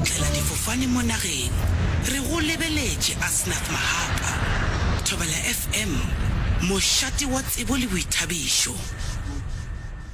Tlela difofane mo nageng, re go lebeletše Asnath Mahapa, Thobela FM, mošate wa tsebo le boithabišo.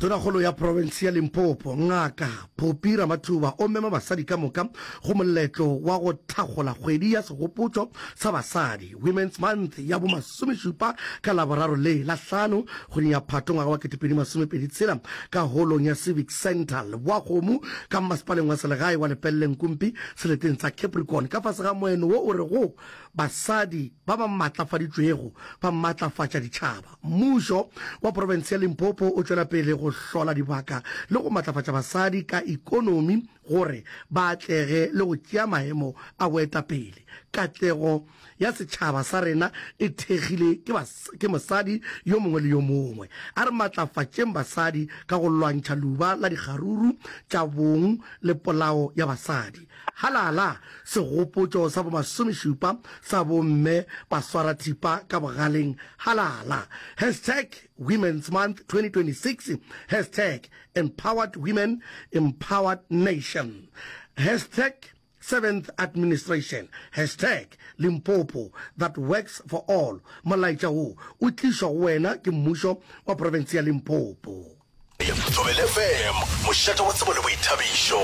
Tonakgolo ya profense ya Limpopo, Ngaka Phophi Ramathuba o mema basadi ka moka go moletlo wa go thakgola kgwedi ya segopotšo sa basadi, Women's Month, ya bo Lesomešupa ka Laboraro le Lahlano kgweding ya Phato ngwaga wa ketepedi masomepedi tshela ka holong ya Civic Centre Leboakgomo ka mmasepaleng wa selegae wa Lepellenkumpi seleteng sa Capricorn ka fase ga moeno wo o rego Basadi ba ba maatlafaditšwego ba maatlafatša ditšhaba. Mmušo wa profense ya Limpopo o tšwela pele go hlola dibaka le go matlafatša basadi ka ikonomi gore ba atlege le go tšea maemo a boetapele. Katlego. ya setšhaba sa rena e thekgile ke, ke mosadi yo mongwe le yo mongwe. A re matlafatšeng basadi ka go lwantšha luba la dikgaruru tša bong le polao ya basadi. Halala! Segopotšo sa bomasomešupa sa bomme baswarathipa ka bogaleng. Halala! Hashtag Women's Month 2026 Hashtag Empowered Women Empowered Nation Hashtag Seventh Administration, Hashtag Limpopo that works for all, Molaetša wo o tlišwa go wena ke Mmušo wa Profense ya Limpopo. Thobela FM, mošate wa tsebo le boithabišo.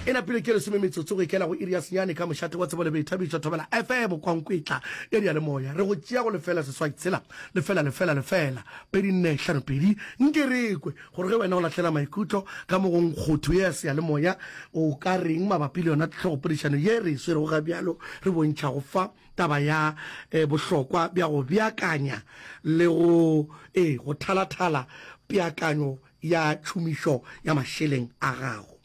E napile ke lesome metsotso go ikela go iri ya senyane ka mošate wa tsebo le boithabišo Thobela FM Kwankwetla ya diyalemoya re go tšea go lefela seswai tshela lefela lefela lefela pedi nne hlano pedi nkerekwe Gore ge wena o lahlela maikutlo ka mo go nkgotho ye ya seyalemoya, o ka reng mabapi le yona tlhogopodišano ye re e swerego ga bjalo re bontšhago fa taba ya eh, bohlokwa bja go beakanya le go eh, go thalathala peakanyo ya tšhomišo ya mašeleng a gago?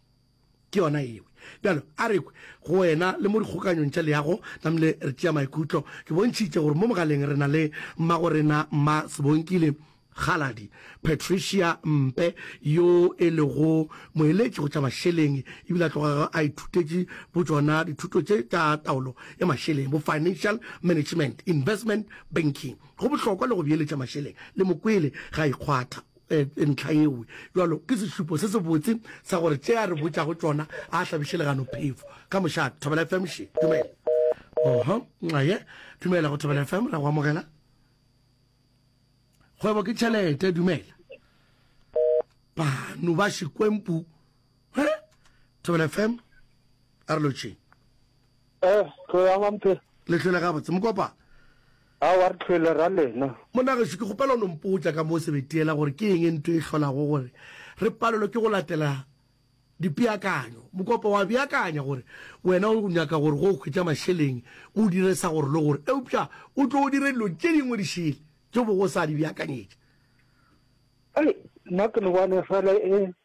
Ke yona ewe. Bjalo, a re kwe, go wena le mo dikgokanyong tša leago, namile re tšea maikutlo. Ke bontšhitše gore mo mogaleng re na le mmago rena, Mma Sebonkile, Kgaladi Patricia Mpe, yo e lego moeletši go tša mašeleng, e bile a tlogago a ithutetše bo tšona dithuto tše tša taolo ya mašeleng, bo Financial Management, Investment Banking. Go bohlokwa le go beeletša mašeleng, le mo kwele ge a ikgwatha. Ntlha yewe bjalo ke sešupo se se botse sa gore tše a re botšago tšona a hlabiše legano phefo ka mošate. Thobela FM še dumela. Oho, nxaye, dumela go Thobela FM, ra go amogela. Kgwebo ke tšhelete, dumela. Banu ba Xikwempu. He? Thobela FM, a re lotšheng. Eh, tlo yang ampe? Le tlhole gabotse, mokopa. A wa re tlhole ra lena. Monagešu, ke kgopela o no mpotša ka mo sebetiela gore ke eng e nto e hlolago gore re palelwe ke go latela dipeakanyo. Mokopa, wa beakanya gore wena o nyaka gore go hwetša mašeleng o dire sa gore le gore, eupša o tlo o dire dilo tše dingwe di šele tše o bego o sa di beakanyetša. Ai, nna ke no bone fela e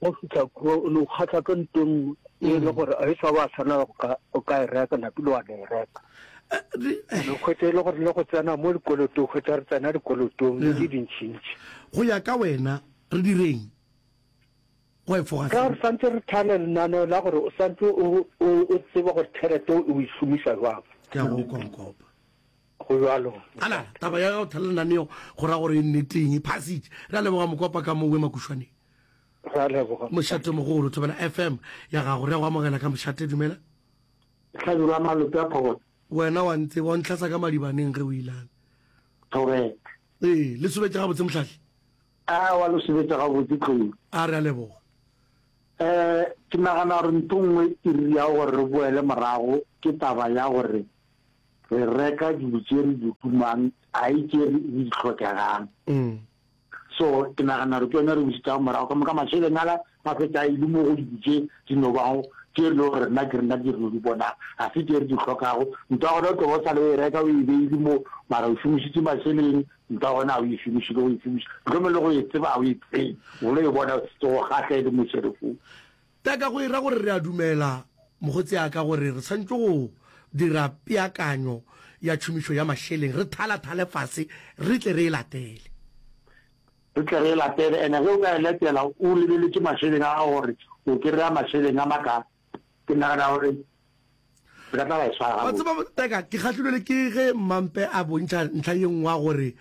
Ge o fihla kua, o no kgahla ka nto e nngwe e le gore a e sa ba tshwanela go ka, go ka e reka, napile wa no e reka. No hwetša e le gore le go tsena mo dikolotong, hwetša re tsena dikolotong le di dintšintši. Go ya ka wena, re direng go efoga Ka seo? re santse re thale lenaneo la gore o santse o, o, o tseba gore tšhelete o e šomiša jwang. Ke a go konkopa. Go bjalo. Ala, taba ya go thelela naneo go ra gore e nneteng. Passage. Re a leboga Mokopa ka mo Boemakušwaneng. Re a leboga. Mošate mogolo, thobela FM ya gago. Re a go amogela ka Mošate, dumela. Hlabirwa Malope a Phogotse. Wena wa ntseba, wa ntlhasa ka madibaneng ge o ilane. Correct. Ee, le subetša gabotse Mohlahli. A wa le subetša gabotse Tlou. A re a leboga. Eh, ke nagana gore ntho nngwe e diriago gore re boele morago ke taba ya gore re reka dilo tše re di tumang a e tše re di tlhokegang mm. so ke nagana re tsone re busitsa morago ka moka masheleng ala a fetsa a ile mo go dilo tše di no bago tše le gore nna ke rena ke re no di bonang ga se tše re di tlhokago nto ya gona o tloba o sa le o e reka o e beile mo mara o šomišitse masheleng nto ya gona ga o e šomiše le go e šomiša tlhome le go e tseba ga o e tsebe o lo e bona tse go gatlha e le mo serefong Ta ka go e ra gore re a dumela, mokgotse a ka, gore re swanetše go dira peakanyo ya tšhomišo ya mašeleng, re thalathale fase re tle re e latele. Re tle re e latele. Ene ge o ka e letela o lebeletše mašeleng a gago gore o kry-a mašeleng a makae, ke nagana gore wa tseba teka ke kgahlilwele ke ge mmampe a bontšha ntlha ye nngwe gore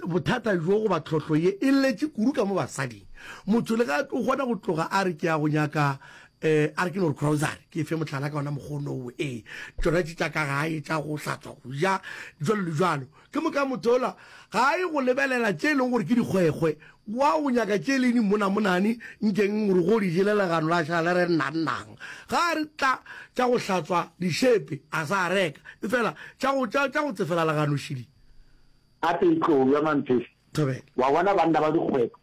bothata jo goba tlhohlo ye e letše kudu ka mo basading motho le ga o kgona go tloga a re ke ya go nyaka um a re ke no re crosary ke fe motlhala ka ona mokgonowo ee tsona tše tša ka gae tša go hlatswa go ja jalo le jalo Ke moka motola ga a ye go lebelela tše e lego gore ke dikgwekgwe, wa go nyaka tše le dimmonamonane, nkeng gore go di jele legano la šala le re nnannang. Ga a re tla tša go hlatswa dišepe a sa reka, efela tša go, tša, tša go tsefela legano šili. Gape e tlo ya, Manthese, Thobela. wa bona banna ba dikgwekgwe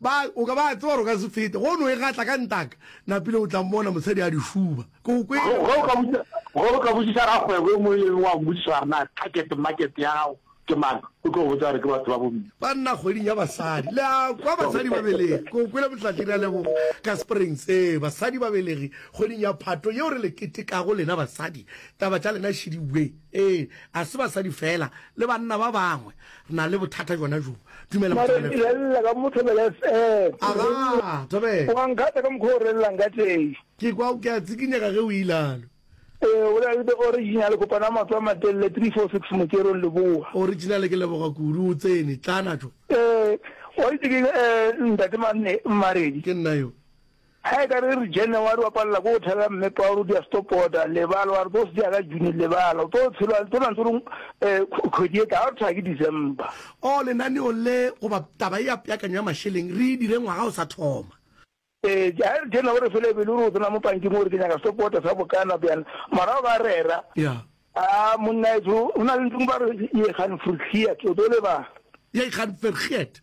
Ba, o ka ba a tseba gore o ka se fete, go no e gatla ka ntaka. Napile o tla mmona motshadi a di šuba. Ke go kwele. Ge, ge o ka botšiša, ge o ka botšiša rakgwebo e mongwe le e mengwe, wa mo botšiša gore na target market ya gago ke mang, o tlo go botša gore ke batho ba bomme. Ba nna kgweding ya basadi. Le a kwa? Basadi ba belegi. Ke go kwele Motlatširi a leboga ka Springs. Ee, basadi ba belegi kgweding ya Phato, yeo re le ketekago lena basadi. Taba tša lena šidi bwe. Ee, ga se basadi feela, le banna ba bangwe. Re na le bothata gona jo. Dumela Mare Mothabela. direlela ka mothobela fm Aga, Thabela. wa nkgatha ka mokgwa o relelang ka teng Ke kwa ke a tsikinyega ge o ilalo. ee o na le the original kopana matso a matelele 346 mokerong leboa Original ke leboga kudu o tsene. Tlana jo. ee wa itse ke eh, ntate Mane- maredi Ke nna yo. Ge e ka re re January wa palela ko go thela mme Paul dia stopota lebala wa re tlo se dia ka June lebala o tlo tshelo a tsona ntse rong kgwedi e tla ga re thaya ke December. O lenaneo le goba taba e ya peakanyo ya mašeleng re e dire ngwaga o sa thoma. E, ge e re January fela e be le gore o tsena mo pankeng o re ke nyaka stopota sa bokana bjana mara o ba rera. Ya. A monna etso go na le ntseng ba re ye gaan vergeet o tlo lebala. Ye gaan vergeet.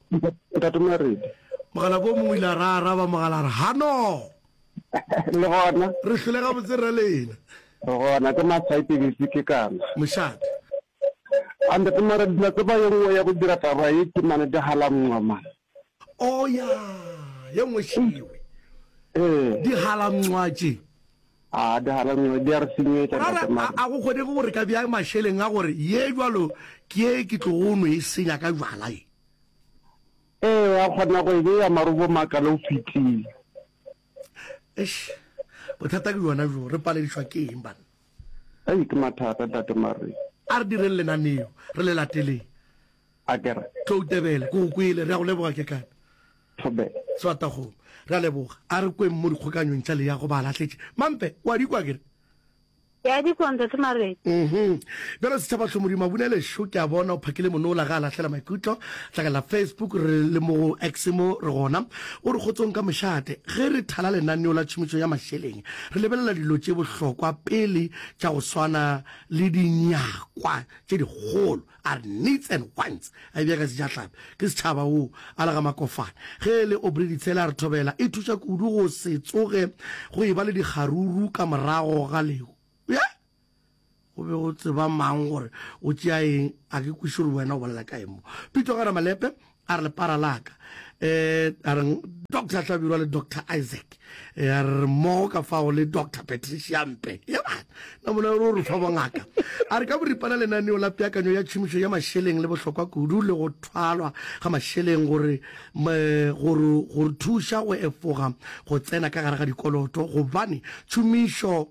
Ntate Maredi. Mogala ko mongwe o ile a ra araba mogala a re, Hano! Le gona. Re hlole gabotse rra Leina. Re gona, ke masaete bese ke kana. Mošate. A Ntate Maredi, la tseba ye nngwe ya go dira taba ye ke mane dihalamnxwa man. Oh, ya, ye nngwe šewe. Ee. Dihalamnxwa tše. Brother, a, a go kgonege go re ka bjang mašeleng a gore ye jwalo ke ye ke tlogo no e senya ka jwala ye? Ee, wa kgona go e bea marobo makalo o fetile. Eish, bothata ke bjona bjo, re paledišwa ke eng banna? Ei, ke mathata ntate Marry. A re direng lenaneo, re le lateleng. a ke re. Toutebele, ke go kwele. Re a go leboga, Kekana. Thobe. Swatagong, re a leboga. A re kweng mo dikgokanyong tša leago ba lahletše. Mampe, o a di kwa, ke re? Ke a di kwa, Ntate Marete. Uhum. Bjalo Setšhabahlong, Modimo a bune lešo, ke a bona o phakile monola ge a lahlela maikutlo. Hlakalela Facebook, re le mo go X mo, re gona. O re kgotsong ka mošate. Ge re thala lenaneo la tšhomišo ya mašeleng, re lebelela dilo tše bohlokwa pele tša go swana le dinyakwa tše dikgolo. a re needs and wants a e bjaka sejahlapi ke setšhaba wo a lega makofane ge e le obrey ditshele a re thobela e thuša kudu go se tsoge go e ba le dikgaruru ka morago ga leo ye go be go tseba mang gore o tšea eng a ke kwiše gore wena o bolela ka eng mo pito ga ramalepe A re lepara la ka, eh, a reng Doctor Hlabirwa le Doctor Isaac, eh, a re mmogo ka fao le Doctor Patricia Mpe. Ya bana, na mona o re fa bongaka. A re ka boripana lenaneo la peakanyo ya tšhomišo ya mašeleng le bohlokwa kudu le go thwalwa ga mašeleng gore gore gore thuša go efoga go tsena ka gare ga dikoloto gobane tšhomišo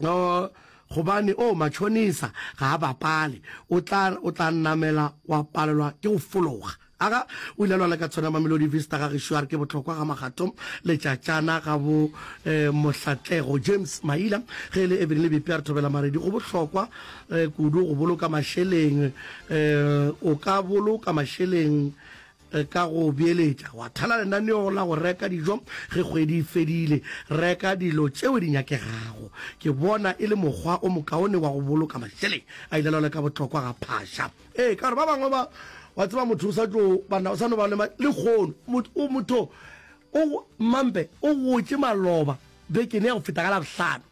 uh, gobane o oh, matšhonisa ga a bapale o tla o tla namela wa palelwa ke go fologa aga o ile lwala ka tshwana mamelodi vista ga gešo a re ke bohlokwa ga magato letšatšana ga bo eh, mohlatlego james maila ge e le ebene le bepe a re thobela maredi go bohlokwa eh, kudu go boloka mašeleng eh, o ka boloka mašeleng Re ka go beeletša wa thala lenaneo la go reka dijo ge kgwedi e fedile. Reka dilo tšeo di nyakegago. Ke bona e le mokgwa o mokaone wa go boloka mašeleng a ile lole ka bohlokwa ga phaša. Ee, ka gore ba bangwe ba, wa tseba, motho o sa tlo ba na, o sa no ba le lekgono. Mot, o, motho o, mmampe, o gotše maloba bekeng ya go feta ka Labohlano.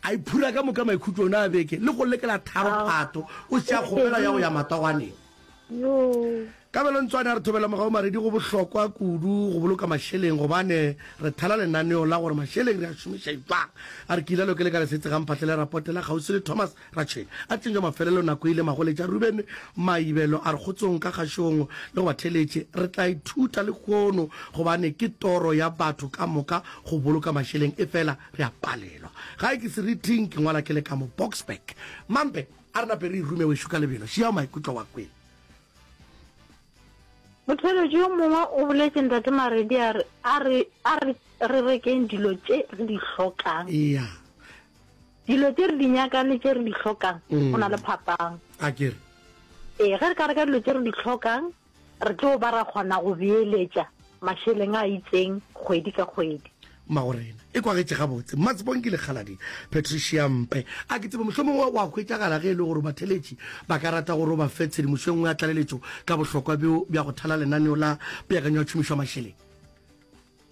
a iphura ka moka maikhutlong a beke le go lekela tharo phato o se a kgopela ya go ya matwawaneng ka belontswane a re thobela mogao maredi go bohlokwa kudu go boloka mašeleng gobane re thala lenaneo la gore mašeleng re a šomiša jwang a re ke ilalo ke leka lesetse ga mphatlele rapote la kgauswi le thomas Ratšheng a tlišwa mafelelo nako ile magoletša Rubene maibelo a re kgotsong ka kgašong le go ba theletše re tla ithuta lekhono gobane ke toro ya batho ka moka go boloka mašeleng efela re a palelwa gae ke seriting ke ngwala ke le ka mo Boksburg mampe a re nape re irume wešo ka lebelo šiao maikutlo wa kwele. Motheletši yo mongwe o boletše ntate Maredi a re a re a re re rekeng dilo tše re di hlokang. Eya. Dilo tše re di nyakang le tše re di hlokang go na le phapang. A ke re? Ee, ge re ka reka dilo tše re di hlokang, re tlo ba ra kgona go beeletša mašeleng a itseng kgwedi ka kgwedi. Magorena, e kwagetše gabotse. Mmatsebong ke lekgaladi Patricia Mpe. A ke tsebe mohlomongwe wa go hwetšagala ge e le gore batheeletši ba ka rata gore o ba fe tshedimošo e nngwe ya tlaleletšo ka bohlokwa bjo bja go thala lenaneo la peakanyo ya tšhomišo ya mašeleng.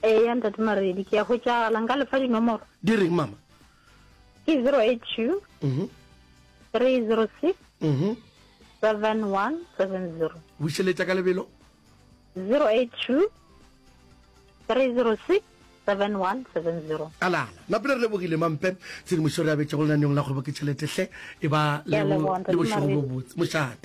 Eya ntate Maredi ke ya hwetšagala nka lefa dinomoro. Di reng mama? Ke 082 mm 306 mm 7170. Bušeletša ka lebelo. 082 306 7170. A lala na pele re lebogile mampe tshedimošo re abetšego lenaneong la kgwebo ke tšheletehle e ba le bošego bo botse mošate.